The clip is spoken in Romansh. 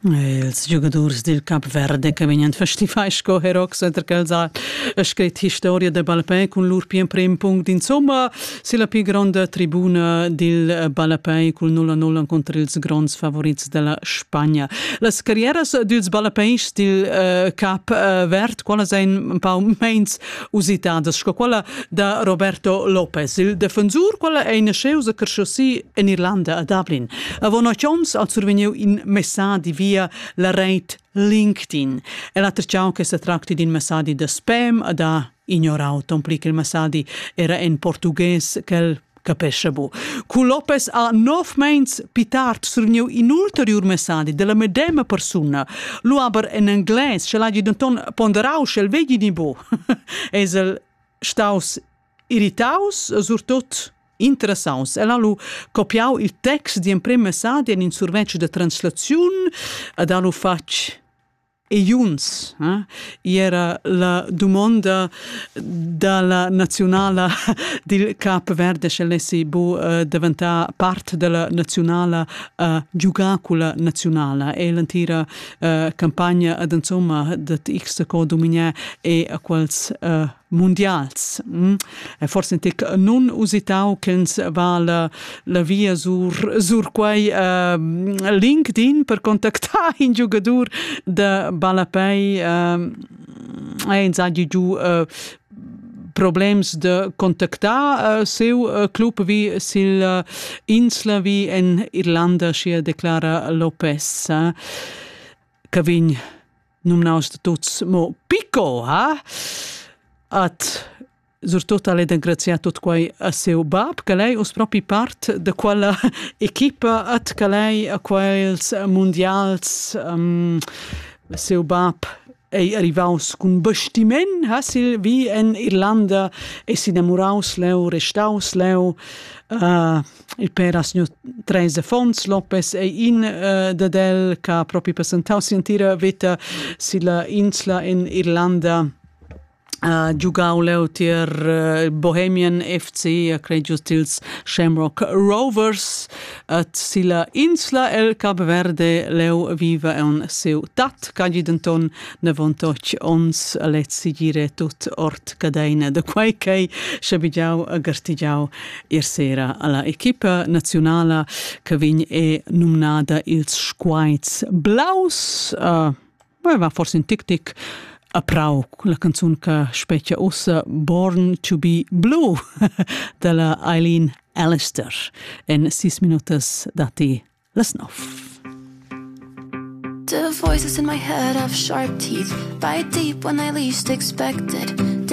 Ils giugadurs dil Cap Verde che vegnan festivai sco herox center calzar e scrit historia da ballapei cun lur pien prim punct insomma si la pli gronda tribuna dil ballapei cul 0-0 conter ils gronds favorits della Spagna. Las carrieras dils ballapeis dil uh, Cap uh, Verd qualas ein un pau meins usitadas sco quella da Roberto Lopez, il defensur, quella è nasceus e cresciusi en Irlanda a Dublin. Avon ocht ons ha survegniu in messadi via la reit LinkedIn. E la trciau che se tracti d'un messadi de spam da ignorau ton pli che il messadi era en portugues quel Capesce bu. Cu Lopez ha nov meins pitart surniu in ulteriur messadi della medema persuna. Lu aber en englais, sch'el hagi denton ponderau, sch'el vegli ni bu, es el staus irritaus, surtot interessaus. El ha lu copiau il text di emprem messadi en in survetsch de translaziun, ad ha lu fatg e Junts. Eh? Era la dumonda dalla naziunala dil Cap Verde, sche lessi bu uh, daventar part della naziunala uh, giugacula naziunala e l'entira uh, campagna ad insomma dat x co dominier e a quals uh, mundials. Mm. Forse tic nun usitau ch'ins va la, la via sur, sur quei uh, LinkedIn per contactar in giugadur de ballapei uh, e insagi giu uh, problems de contactar uh, seu uh, club vi sil uh, insla vi en Irlanda, sia declara Lopez, uh, che vin numnaus da tuts mo Pico, ha? At surtut al è engrazià tut quai a seu bab, che lei us propi part da quella equipa at che lei a quels mundials um, seu bab ei arrivaus cun bestimen, ha sil vi en Irlanda e s'innamoraus leu, restaus leu, uh, Il per ha signur Treis Affons Lopez ei in uh, dad el che ha propi presentau si'entira veta silla insla in Irlanda Uh, giugau leu tier uh, Bohemian FC, uh, cregiu tils Shamrock Rovers, et silla insla el Cap Verde leu viva en seu tat, cagi denton nevontoc ons lezzi gire tut ort cadeina de quei ch'ei schabigiau a gartigiau Ier sera ha la equipa naziunala che vegn è numnada ils Squaits Blaus. Uh, va forse in tic-tic a Prau, la canzun che specchia ussa Born to be Blue dalla Eileen Alistair. En sis minutas datti las nov. The voices in my head have sharp teeth. Bite deep when I least expect it.